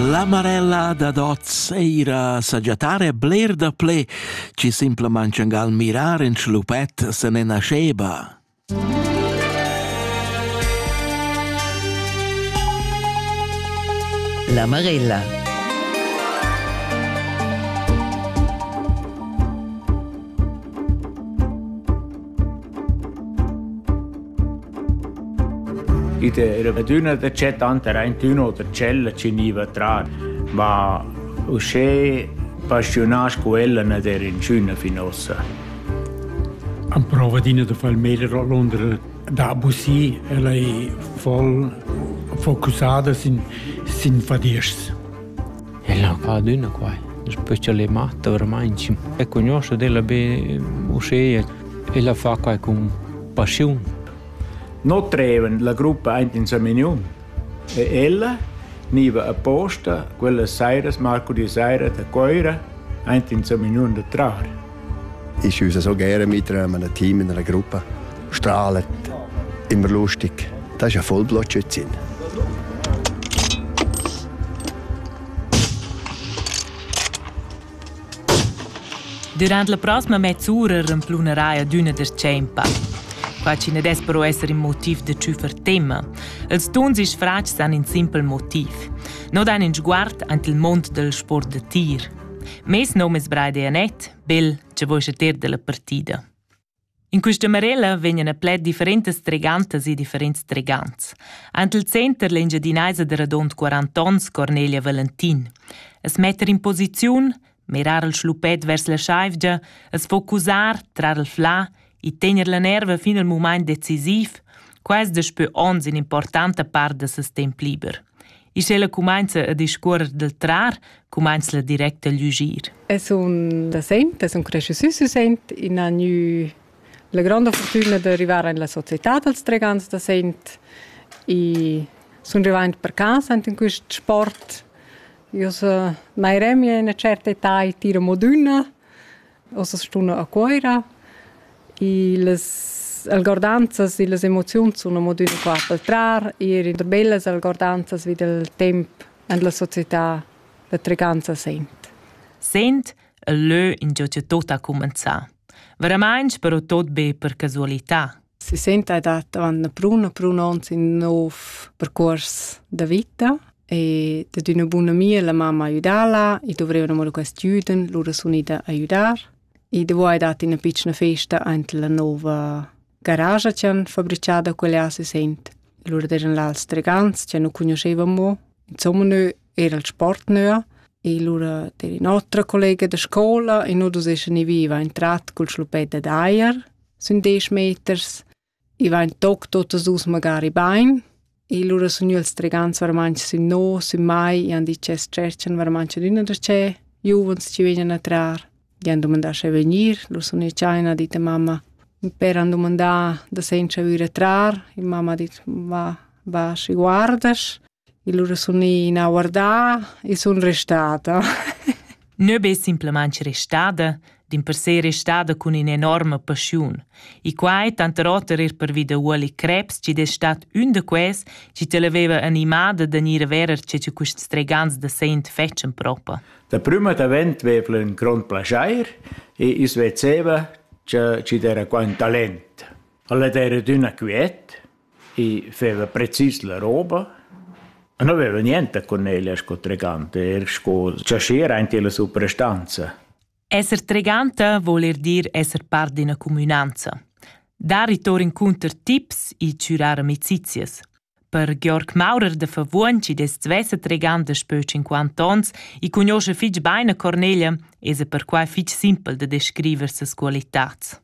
La marella dad hoz eira sagiatar e bler da ple chi simplamaing gal mirar in schlupet se ne nascheva. La marella I era adüna da chat tanter aintün oter ch'ella chi gniva a trar, ma uschè paschiunà scu ella n'ad era inchüna fin ossa. Amprova adina da far il meglio a Londra da abusir. Ella è voll focussada sin, sin fadiers. El ha fat adüna quai, specialmaing daveramaing e cugnuoscha d'ella be uschea. El ha fat quai cun paschiun. No trevan la gruppa aint in sa menu e ella gniva apposta quella sairas, marcudì saira da Coira, aint in sa menu da trar. ist unser so gerne mit einem Team in einer Gruppe. Strahlt, immer lustig. Das ist ja voll Blotschützin. Durant la prossima mezz'ura remplunerà d'una descempa. Qua ci ne des però essere il motiv de ciufer tema. Els tuns is fratgs han in simpel motiv. No dan in sguard ant il mond del sport de tir. Mes nom es Braide Anett, bel, che voi ter della partida. In questa marella vegnan a pled differentas tregantas e differents tregants. Ant il center l'engiadinaisa de radont 40 ons Cornelia Valentin. Es metter in posiziun, mirar il schlupet vers la schaivgia, es focusar, trar il flà e tener la nerva fin al mumaint decisiv, quais daspö ons in importanta part da ses temp liber. E sch'ella cumainza a discuorrer dal trar, cumainzla direct a lügir. Es un da saint, es un cresciusü sü saint, in ha gnü la granda fortuna d'arrivar in la società dals tregans da saint e sun rivaint per casa in quist sport. Io so mai remia in una certa età e tiro modüna Ossa stuna a Cuoira. I las algordanzas e las emoziuns sun amo düna qua pel trar, eir in der bellas algordanzas vi dal temp en la società da Treganza Sent. Sent e lö ingio cha tuot ha cumenzà. Veramaing però tuot be per casualità. Si senta dat avant prun a prun ons in nov percurs da vita e dad üna buna amia la mamma aiudala e dovreva mo quest jüden, lura sun ida a aiudar. E dovo hai dat ina piccina festa ant la nova garage che han fabricada quella si sent. Lura eran là als tregants che nu conoscevamo. Insomma, noi era il sport nöa e lura era un'altra collega da scola e noi dus essan viva entrat col schlupetta d'aier sun desch meters, i va ün toc tuottas duos magari bain. E lura sun io els tregants varmant sün no, sün mai, i han dit che stretchan varmant l'üna da che, giuvens ci vegnan a trar. Gli han dumandà sche venir, lur sun i cha ha dit a mamma. Per han dumandà da senza vüre trar, e mamma ha dit va, va schi guardasch. Il ura sun ina guardà e sun restada. Nö be simplamaing restada, dimpersè restada cun in'enorma paschiun. E quai tanter oter er pervi da Uoli Krebs, chi es stat ün da quels chi televeva animada da gnir a verer che che quist stregans da sent fetschen propa. Da prüma davent vev'la ün grond plaschair e i's vezeva cha chi d'era qua ün talent. Ella d'era d'üna quiet, I feva precis la roba e nu veva niente cun ella sco treganta, eir sco chaschier aint illa suprastanza. Esser treganta voul eir dir esser part d'üna cumünanza. Dar i tour incunter tips e chürar amicizias. Per Georg Maurer da Favuogn, chi dess svessa treganda spö 50 ons e cugnuoscha fich bain a Cornelia, esa perquai fich simpel da descriver ses qualitats.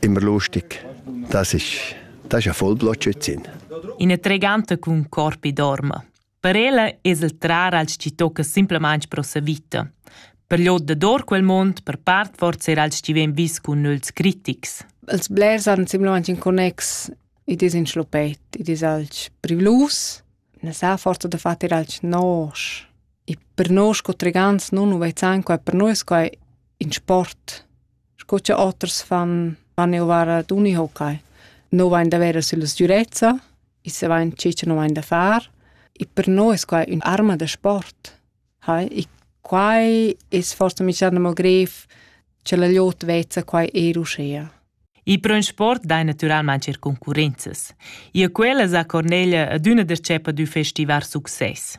Immer lustig. Das ist, das ist ein Vollblotschützin. Ina treganta cun corpi dorma. Per ella es el trar als chi tocca simplamain pro sa vita. Per l'od dor quel mond, per part forse er als chi ven vis cun nüls critics. Els blers han simplamain in connex, i dis in schlopet, i dis alch privlus, ne sa forza da far alch nosch. E per nos co tregants nun nu vezzan quai, per noi es quai in sport. sco che oters fan, fan eu vara d'unihockey. No vain da vera sulla sgürezza, e se vain ciò che no vain da far. E per noi es quai un'arma da sport. Hai? E quai es forse mischando mo gref che la liot vezza quai er uschea. I pro in sport dai natüralmaing er concurrenzas. Ia quella sa Cornelia ad üna dercepa d'ü festivar success.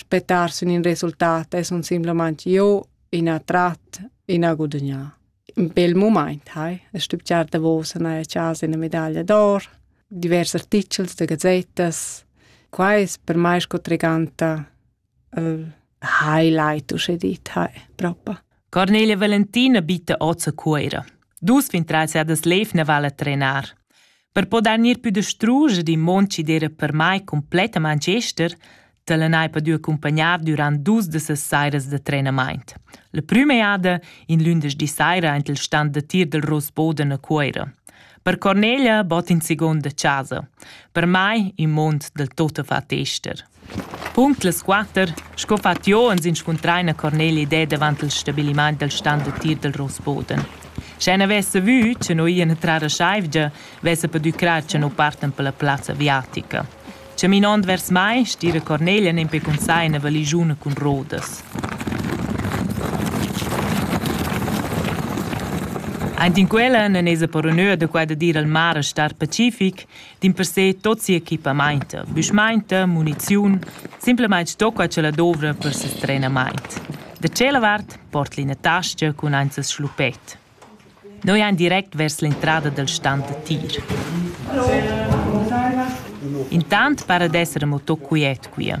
Spettar sün in resultat es un simplamaing jo in attrat, in a gudagnà. Un bel mumaint hai. Es stübgià davos a gnanca chasa üna medaglia d'or, divers artichels da gazettas. Quai es per mai sco treganta il highlight, usche dit, hai propa. Cornelia Valentina bitta oz a Cuoira. Dus 23 das lev ne vala trenar. Per poder gnir pü distruger il mond chi d'eira per mai cumplettamaing ester, t'allanai per dür accumpagnar dürant dus da ses sairas da trenamaint. La prüma jada, in lündeschdi saira aint il stand da tir del Rosboden a Cuoira. Per Cornelia bot in segonda chasa. Per mai in mond del tot a far tester. Punct las quatter, sco fat jeu, ans inscuntrain a Corneli ded avant il stabilimaint dal stan d'utir dal Rossboden. Sche n'avesse vü cha no ian a trar a Scheivgia, vessa pudü crar cha no partan per la plazza aviatica. Chaminond vers mai, stira Cornelia nempe cun sai ina valigiuna cun rodas. Aint in quella nan esa per onur da qua da dir al mar a star pacific dimpersè tot sia equipamaint, büschmaint, muniziun, simplamaing stocca cha la dovra per ses trenamaint. Da tschella vart port l'ina tascha cun aint ses schluppet. Noi ein direct vers l'entrada dal stand da tir. Intant para d'esser moto quiet quia.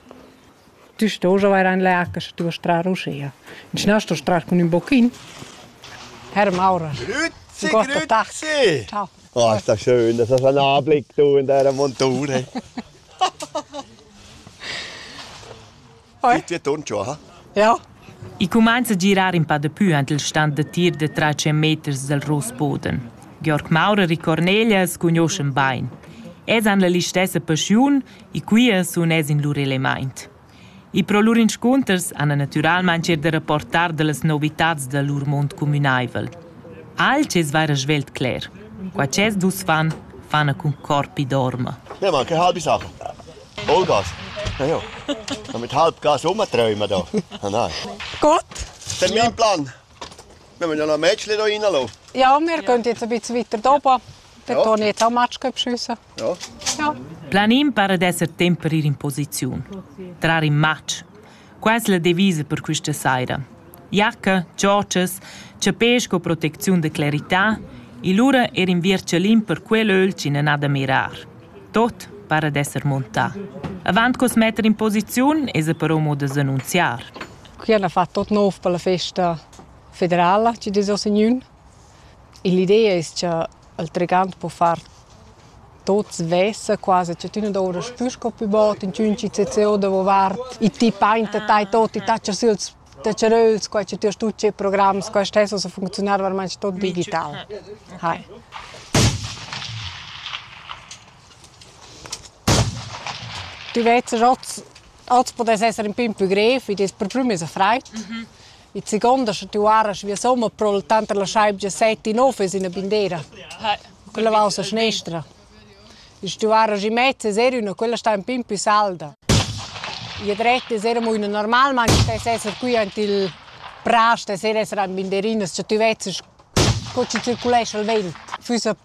Tu stos avair ein leaca sche tu vas trar uschia. In schnell stos trar cun ün bochin. Herr Maurer. Grüezi, grüezi. Ciao. Oh, ist das schön, dass das ein Anblick, du in deiner Monture. Bitte ton schon, ha? Ja. I cumainza a girar in pa da pü ant il stand da tir da tra 100 meters del Rosboden. Georg Maurer e Cornelia scugnoscen bain. Es han la listessa paschiun e quia sun es in lur elemaint. E pro lur inscunters hana natüralmaing eir da rapportar da las novitats da lur mond cumünaivel. Alch es vaira svelt cler. Qua ch'es dus fan, fana cun corpi dorma. Ne, ma che halbe Sachen. Vollgas. Ja, ja. Dann mit halb Gas rumträumen da. Ah, nein. Gut. Das ist mein Plan. Wir müssen ja noch Mädchen da reinlassen. Ja, wir gehen jetzt ein bisschen weiter oben. Da ja. tue ich jetzt auch Matsch beschissen. Planin para d'esser temp per ir in posiziun. Trar in matg. Quai es la devisa per quista saira. Jacca, giòtschas, chapè sco protecziun da clarità e lura ir in vierchalin per quel ögl chi nan ha da mirar. Tot para d'esser montà. Avant cos metter in posiziun esa però mo da s'annunziar. Qui hanno fatto tot nov per la festa federala che des ho signun. E l'idea es cha Il trigant po far tuots svessa quasi, cioè tü nu dovrast pü sco pü bod inchün CCO davovart. I ti painta tai tot, i tatscha süls taccheröls, quai cha tü hast tut tschè programs, quai stess ussa funcziunar varmaing tot digital. Hai. Tü vez hoz podes esser ün pin pü grev, id es per prüm esa fraid. Il second ha situar as via somma pro il tant la schaibgia set in office in bindera. Quella va a sinistra. Il situar as in mezzo serio, quella sta un pin più salda. E dretta sera mo una normal, ma stai essere qui ant il pras, stai essere an binderinas, cioè tu vezzes co ci circulesce il vento. Füssa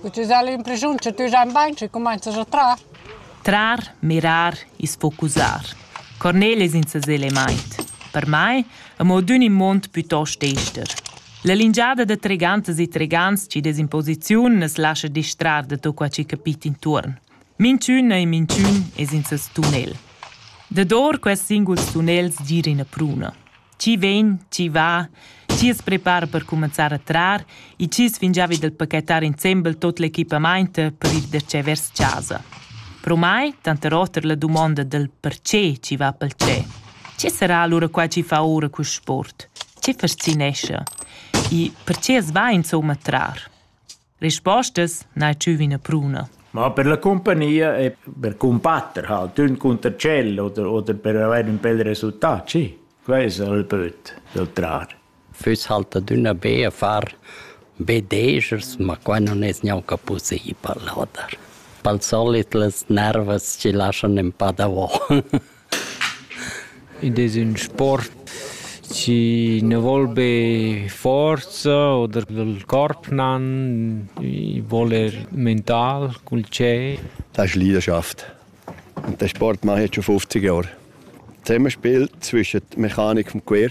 Cu tü s'has l'impressiun cha tü stai bain, schi cumainzas a trar. Trar, mirar e sfocusar. Cornel es in sesel e maint. Per mai, amo d'ün immond pütost ester. La lingiada da tregantas e tregants chi'd es in posiziun nu's lascha distrar da tot quai chi capit intuorn. Minchün e minchün es in seis tunnel. Dador quests singuls tunnels gira üna pruna. chi vegn, chi va, schi's prepara per cumanzar a trar e chi's fingiavi dal paquetar insembel tuot l'equipamaint per ir darcheu vers chasa. Pro mai, tanter oter la dumonda dal perche chi va pel tschè. Che sarà alura qua chi fa oura quist sport? Che fascinescha? E perche as va insomma a trar? Rispostas n'hai tschü üna pruna. Ma per la cumpagnia e per cumbatter ha tun cunter tschel oder, oder per avair ün bel resultat, sì. Quai es il böt dal trar. Füss halt adüna be a far be dejers, ma quai nun es gnanca pussibel, oder? Pel solit las nervas chi laschan ün pa davo. Id es ün sport chi na voul be forza oder il corp nan, i voul er mental cul tschè. Das ist Leidenschaft. Und den Sport mache ich jetzt schon 50 Jahre. Zusammenspiel zwischen der Mechanik und dem Gewehr.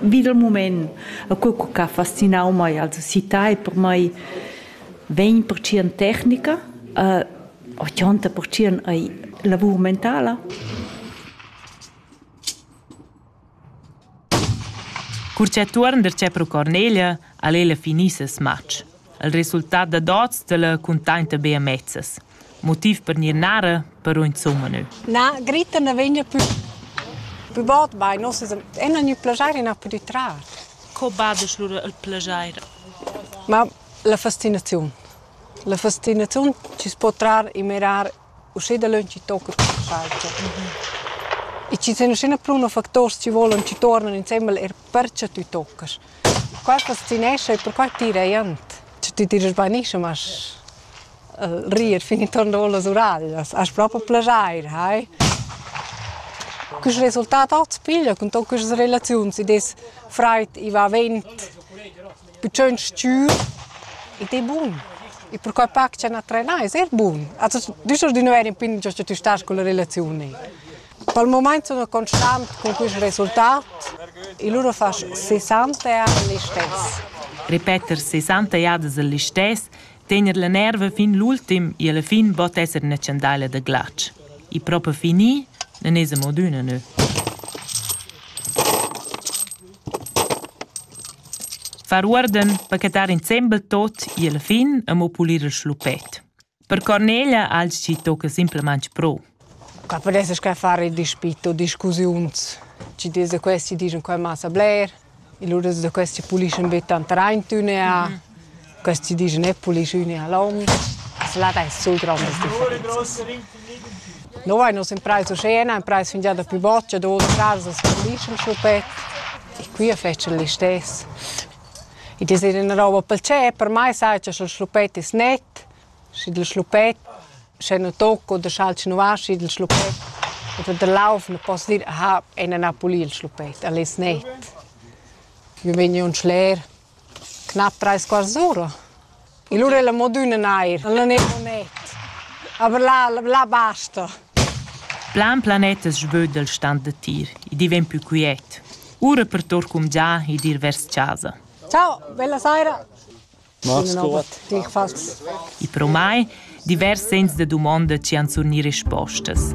Vid il mument e co ch'ha fascinau mei als usità e per mei vegn pertschien tecnica, uh, ochanta pertschien ei lavur mentala. Cur che tuorn der tschep ro Cornelia, al ella finissa smatsch. Il resultat dad oz tala cuntainta be amezzas. Motiv per gnir narra però insumma nö. Na, Grita na vegna pü pü bod bain. Noss es ena gnü plajair e n'ha pudü trar. Co badesch lura il plajair? Ma la fastinaziun. La fastinaziun chi's po trar e mirar Uschè dalöntschi tocca quista chaltscha. E chi sun üschina pruna facturs chi volan chi tuornan insembel eir perche tü toccast. Qua fascinescha e perquai tira jent. Sche tü tirast bain ischa, ma rir fin intuorn davò las uraglias hast propi plaschair, hai? Quist resultat hoz piglia cun tot quistas relaziuns, id es fraid, i va vent. Bütschön stür id ei bun. E perquai pac cha na trenà es eir bun. Also düsch as gnüa eir in pin giò cha tü stast culla relaziun. Pel mumaint sun constant cun quist resultat e lura fasch 60 jada l'istess. Ripeter 60 jadas il listess, tegner la nerva fin l'ultim e alla fin bod esser üna chandaila da glatsch. E propa fini, nun esa mod üna nö. Far uorden pachetar insembel tot gie la fin e mo pulir il schluppet. Per Cornelia ha el schi tocca simplamain pro. Qua podesses che fare il dispit o discussiuns. Ci des da questi digen qua massa bler, e lura da questi puliscen be tant rein tüne a. Mm -hmm. Quest di disch ne puliscüne a l'hom. Là dais sul grandas differenzas. No vain nus imprais uschè, na imprais fingià da pü bod, cha duos fraras as pulischan schluppet. E qui a fetschan listess. Id es ina roba pel tschep, per mai sai cha sch'el schluppet es net, schi dil schluppet, sche nu tocco oder schaltsch nu aschi dil schluppet. Et wenn der laufen poss dir, aha, einer ha pulì il schluppet, el es net. Wir bin ja un schler. Cnap trais quarts ura. Il ura è la modüna nair, la neir planet. Aber là, là basta. Plan planet es svöd dal stand da tir. I di ven plü quiet. Ura per tour cumgià ed ir vers chasa. Ciao, bella saira. Mats Kurt. Ich falls. I pro mai divers sens da dumonda ci han surni respostas.